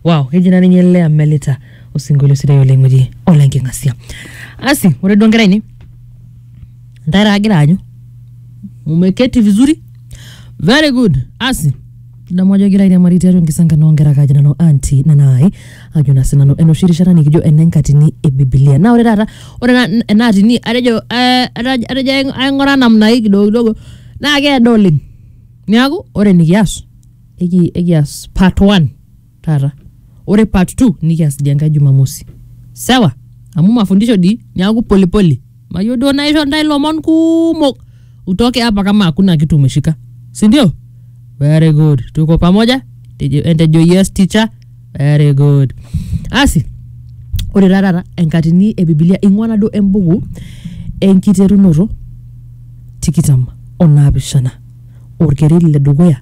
wow keji naa ninye lea melita osinkolio sidai oleng oji ole nking'asia asi ore duo nkera ainei ntae taa agira aanyu umeketi vizuri very good asi kidamu ajo egira airiamari tiatua enkisankano onkera kaji nanu anti nanai ajo na sinanu enoshi rishata nikijo enenkatini e bibilia naa ore taata ore na- ena atini atejo eh, ataj- atejo aing- aing'ura namna hii kidogo kidogo naa keedo oleng niaku ore nikias eki- ekias part one taata ore part two nikias dia nkae jumamosi sawa amu mafundisho di niaku polipoli mayieu duo naisho ntae lomon kumok utoke hapa kama hakuna kitu umeshika sindio very good tuko pamoja Tejo- entejo yes teacher very good asi ore taa taata enkatini e bibilia ing'ua naduo embuku enkiterunoto tikitam onaapishana orkereri le dukuya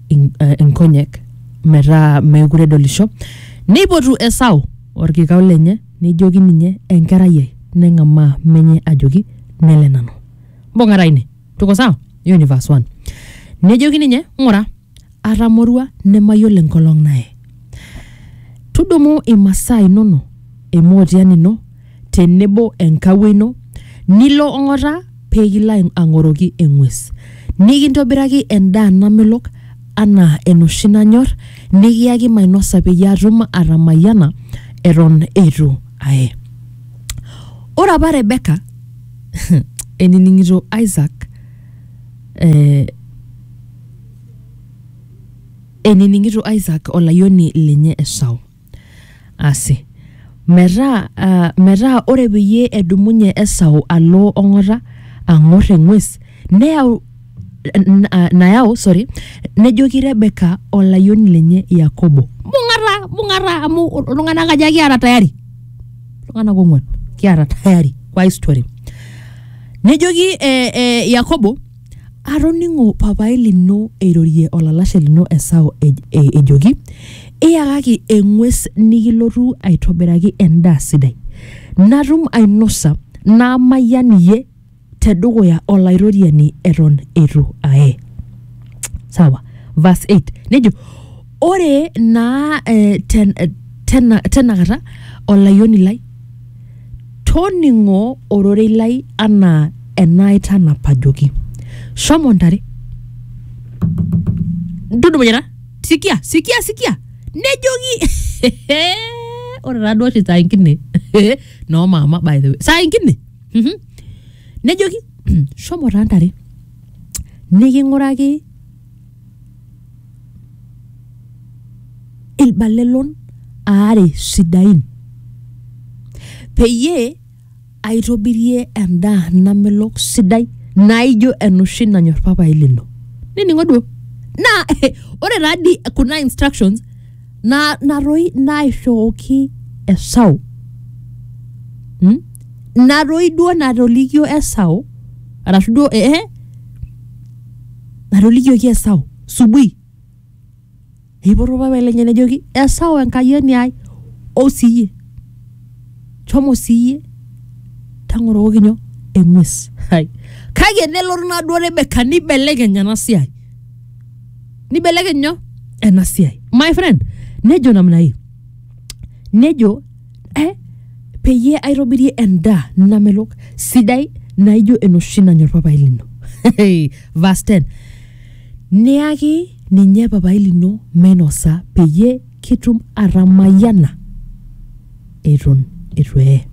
in- eh, inkonyek metaa meekure edolisho neipotu esau orkikau lenye nejoki ninye enkerai ai neng'amaa menye ajoki nele nanu mbung'ata ine tuko sawa hiyo ni verse 1 nejoki ninye ng'ura atamorua nemayiolo enkolong naye tudumu imasaa inono emootian ino tenebo enkawuo ino, nilo ong'ata pee kilo ai- ang'oroki eng'ues, nikintobiraki endaa namelok anaa enoshi nanyor, nikiyaki mainosa peyie atum atamayiana eton eitu aye. Ore apa Rebeka enining'ito Isaac eh, enining'ito Isaac olayioni lenye Esau. Asi. Metaa, ah, metaa ore peyie edumunye Esau alo ong'ota ang'or eng'ues, neyau n- ah, nayau sorry nejoki rebeka olayioni lenye yakobo bung'ata bung'ata amu iltung'anak aja kiata tayari iltung'anak ong'uan kiata tayari kwa hii story nejoki eh, eh, yakobo Atoning'o papaai lino eirorie olalashe lino Esau ej- e- ejoki, Iyakaki eng'ues nikilotu aitobiraki endaa sidai, natum ainosa naamayian iyie te dukuya Olaitoriani eton eitu aye. Sawa. Verse 8 nejo ore naa eh, ten, eh, tena, tenakata olayioni lai toning'o ororei lai anaa enaaitanapajoki shomo ntare tudumunyata sikia sikia sikia nejoki ore taduo oshi saa ingine noo maama by the way saa ingine Mhm. nejoki shomo taa ntare niking'uraki ilbalelon aare sidain peyie aitobirie endaa namelok sidai naijo enoshi nanyor papai lino nining'o duo naa ore taa dii kuna instructions na natoi naishooki esau mm? natoi duo natolikio esau arashu duo eh, atolikioki Esau subui eipoto orpapai lenye nejoki Esau enkayioni ai ou siiyie shomo siiyie tang'orokoki nyoo eng'ues Hai. kake nelotu naduo Rebeka nibelekeny ena siai nibelekeny nyoo ena siai my friend nejo namna hii nejo eh, peyie aitobirie endaa namelok sidai naijo enoshi nanyor papai lino verse 10 niyaki ninye papai lino meinosa peyie kitum atamayiana eton eitu eye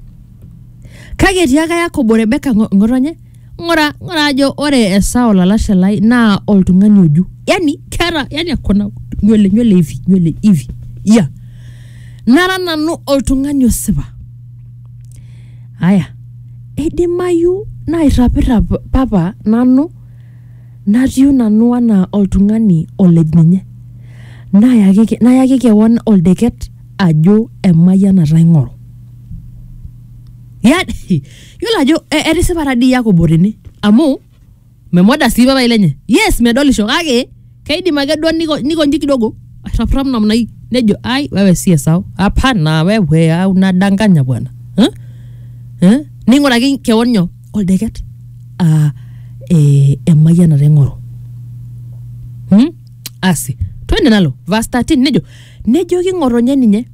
kake etiaka yakobo rebeka ng'o- ng'otonye ng'ura ng'ura ajo ore Esau olalashe lai naa oltung'ani oju yani keeta yani akona nywele nywele hivi nywele hivi ya nara nanu oltung'ani osipa aya eidimayu nairrapirrap papa nanu natiu nanu anaa oltung'ani olej ninye nayaki ke- nayaki kewon oldeket ajo emayianata aing'oru yani yiolo ajo e- etisipata dii yakobo tene amu memoda sii papai lenye yes medolisho kake keidim ake duo niko- nikonji kidogo airrapirrap namna hii nejo ai wewe sie sawa hapana wewe au nadanganya bwana eh? Eh? ning'uraki kewon nyoo oldeket ah, eh, emayianata ing'oru hmm? asi twende nalo verse 13 nejo nejoki ng'otonye ninye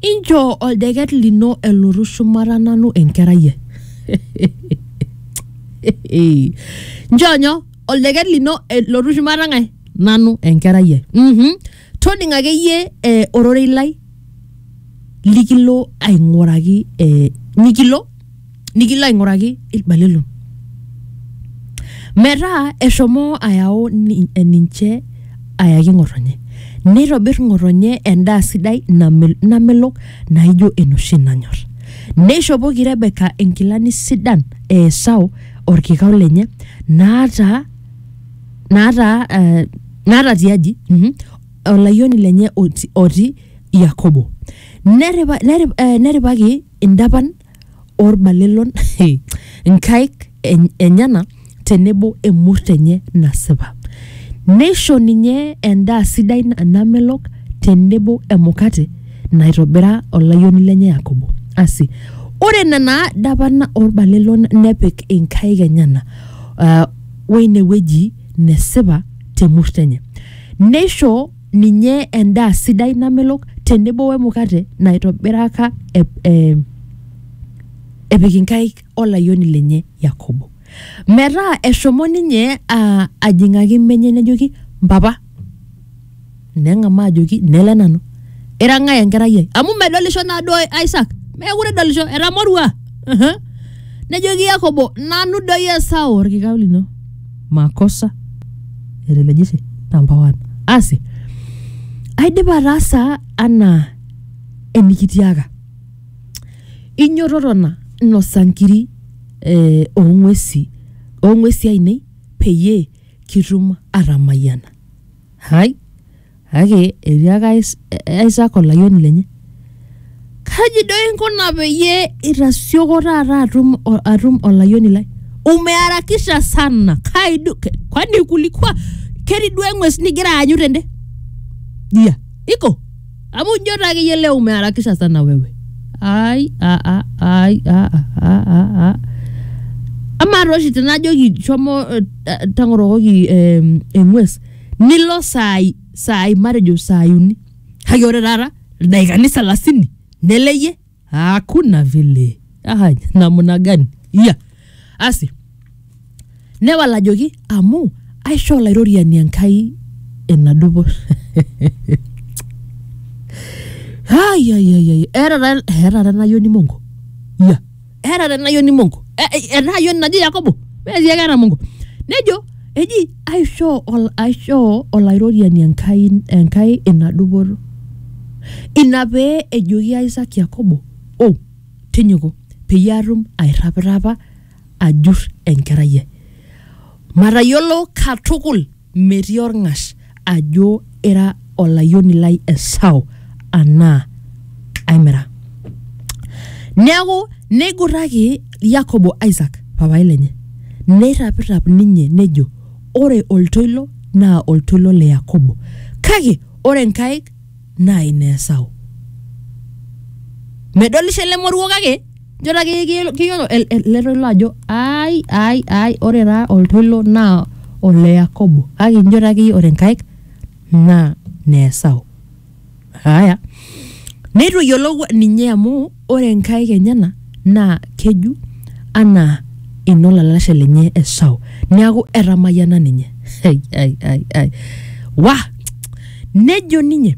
inchoo oldeket lino elotu shumata nanu enkerai ai nchoo nyoo oldeket lino elotu shumata ng'ae nanu enkerai ai mm toning akeyie eh, ororei lai likilo aing'uraki eh, mikilo nikilo aing'uraki ilbalelo metaa eshomo ayau ni- eh, ninche ayaki ng'otonye neitobir ng'otonye endaa sidai namel- namelok naijo enoshi nanyor neishopoki rebeka inkilani sidan e esau orkikau lenye naata naata eh, naata tiaji mhm, olayioni lenye oti- otii yakobo Neripa- nerip- eh, neripaki indapan oorbalelon inkaik enyena tenebo emurt enye nasipa. Neisho ninye endaa sidai namelok tenebo emukate naitobira olayioni lenye Yakobo. Asi, ore nena dapan oorbalelon nepik inkaik enyena uh, weine wueji nesipa temurt enye. Neisho ninye endaa sidai namelok tenebo wemukate naitobiraka e, e, epik inkaik olayioni lenye yakobo metaa eshomo ninye a- ajing'aki menye nejoki mpapa neng'amaa ajoki nele nanu ira ng'ae enkerai ai amu medolisho naaduo isak meekure edolisho etamorua Aha. nejoki yakobo nanu doi esau orkikau lino makosa etelegishe number one asi aidipa ataasa anaa enikitiaka inyoto tona nosa nkiri eh, ong'uesi ong'uesi ainei peyie kitum atamayiana Hai, kake etiaka Is- Isaac olayioni lenye, kaji doi inkuna peyie itasioko taata atum, o- atum olayioni lai? Umeharakisha sana kai du, ke- kwani kulikua ketii duo eng'ues nigira aanyu tende? Dia, iko Amu ijo taa akeyie leo umeharakisha sana wewe. Ai, a a ai, a a a a a. Amaa taa oshi tenajoki shomo eh, ta- tang'orokoki eh, eng'ues nilo saai saai matejo saai uni kake ore taata ildaikani salasini neleyie hakuna vile ah, namna gani iya asi newal ajoki amu aisho olairoriani enkai ina dupoto Ai, ai, ai, ai. Era ta- era ta enayoni mongo iya era ta enayoni mongo Eh, eh, enayoni naji yakobo metii ekera mongo nejo eji aishoo, ol, aishoo olairoriani Enkai, Enkai ina dupoto. Ina pee ejoki Isaac Yakobo, o, tinyuku, peyie atum airrapirrapa ajur enkerai ai. Matayiolo katukul metii olng'ash ajo ira olayioni lai Esau anaa aimira. Neaku neigurraki Yakobo Isaac papai lenye, neirrapirrap ninye nejo, Ore oltoilo naa oltoilo le Yakobo, kake ore nkaik naa ine Esau. Medolisho ele moruo kake Nchoo taa akeyie kiyiolo- kiyiolo el- el- ele toilo ajo ai ai ai ore taa oltoilo naa ole Yakobo kake inchoo taa akeyie ore nkaik naa ne Esau. Haya, neitu eyiolou ninye amu ore nkaik enyena naa keju anaa ino lalashe lenye Esau. Neeku etamayiana ninye. Ai ai ai ai. Wah! Nejo ninye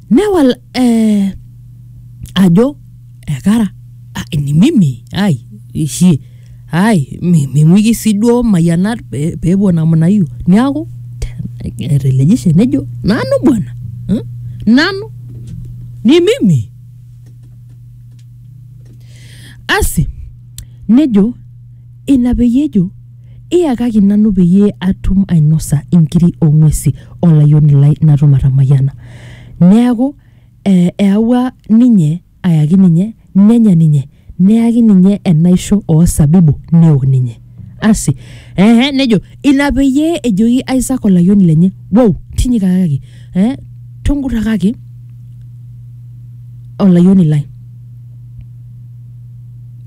newal eh, ajo ekara ah, ni mimi ai ishi ai mi- ming'uiki sii duo mayianat pe- peepuo namna hiyo niaku etelejishe nejo nanu bwana eh, nanu ni mimi asi nejo ina peyie ejo Iyakaki nanu peyie atum ainosa inkiri oo ng'uesi o layioni lai natum atamayiana. Neaku, eawua ninye ayaki ninye, nenya ninye, neyaki ninye enaisho oo sabibu neok ninye. Asi, ee nejo ina peyie ejoki Isaak olayioni lenye, wou, tinyikakaki, ee tungurakaki olayioni lai.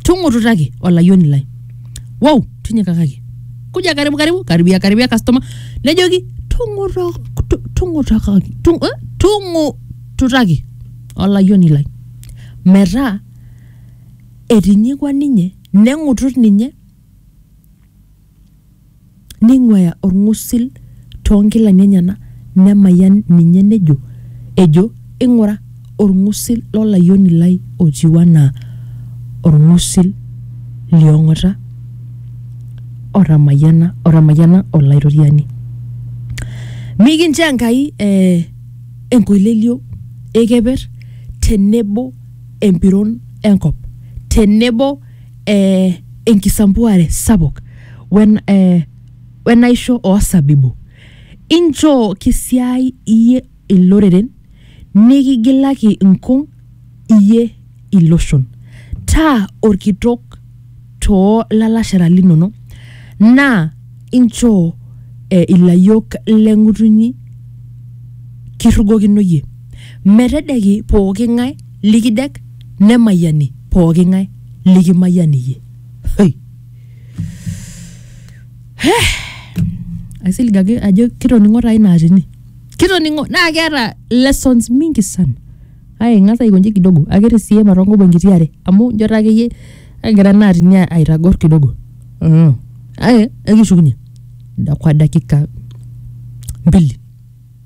tung'ututaki olayioni lai wou tinyikakaki kuja karibu karibu karibia karibia customer nejoki "Tung'uto- tu- tung'utakaki tung- eh, tung'ututaki olayioni lai metaa etinyikua ninye neng'utut ninye neing'uaya olng'usil too nkilani enyena nemayian ninye nejo, ejo, Ing'ura, olng'usil lo layioni lai otiu anaa olng'usil li ong'ata otamayiana, otamayiana Olaitoriani. Mikincho Enkai eh, enkoilelio e keper tenebo empiron e nkop tenebo eh, enkisampuare sapuk wen, eh, wenaisho oosabibu inchoo kisiai iyie iloreren nikigilaki inkung iyie iloshon taa orkitok too lalashera linono naa inchoo eh, ilayiok leng'utunyi kirrugokino iyie metedeki pooki ng'ae likidek nemayiani pooki ng'ae likimayian iyie Hoi. Heh. aisilig ake ajo kitoning'o taa ina atini kitoning'o naa keeta lessons mingi sana ai ing'as aikonji kidogo akere sii ematongobo enkiti are amu njo taa akeyie egira ena atini a- aitagor kidogo mm. ai ekishukunye da- kwa dakika mbili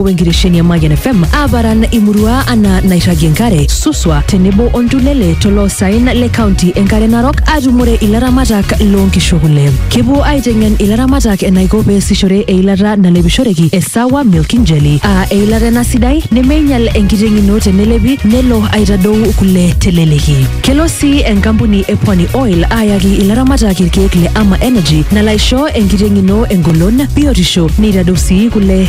Wenkitesheni e Mayian FM aaparan imurua anaa nairragie enkare, Suswa tenebo o Ntulele toloosaen le kaunti e Nkare Narok aatumore ilaramatak loo nkishu kule. Kepuo aiteng'en ilaramatak enaiko peesishore eilata nalepishoreki e Sawa Milking Jelly aa eilata ena sidai nemeinyal enkiteng ino tenelepi nelo aitadou kule teleleki. Kelo sii enkampuni e Pwani Oil aayaki ilaramatak ilkeek le Ama Energy nalo aisho enkiteng ino engolon, biotisho neitadou sii kule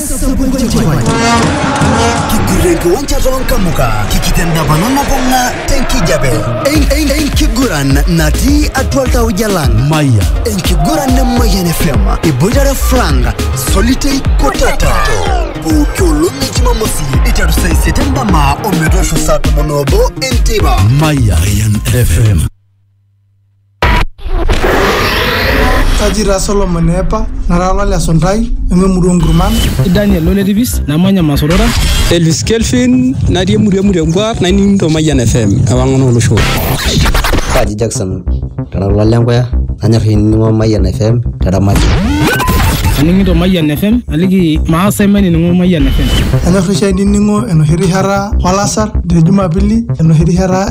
kigurreki onchato nkamuka kikitendapano nabung'a tenkijape En- en- enkiguran natii atua ltauja lang maya enkiguran nemayian fm iboitare frank solitei kotata pooki olong e jumamosi iteru saa isiet endama ometoosho saa tomon oobo enteipa maya fm Kaji taa Solomon eepa, nara olale esuntai, nanu emurua oo nkurman. Kaji Daniel ole tipis, namanya Masorora. Elvis Kelvin, natii emurua e Murengwa, naining'ito Mayian FM, ewang'an oo loshon. Kaji Jackson, kara olale Enkoya, nanyor ainining'o Mayian FM te Ramati. Aning'ito Mayian FM, aliki maas ai mainining'o Mayian FM. Anyor oshi ainining'o enoshi rishata olasar te Jumapili, enoshi rishata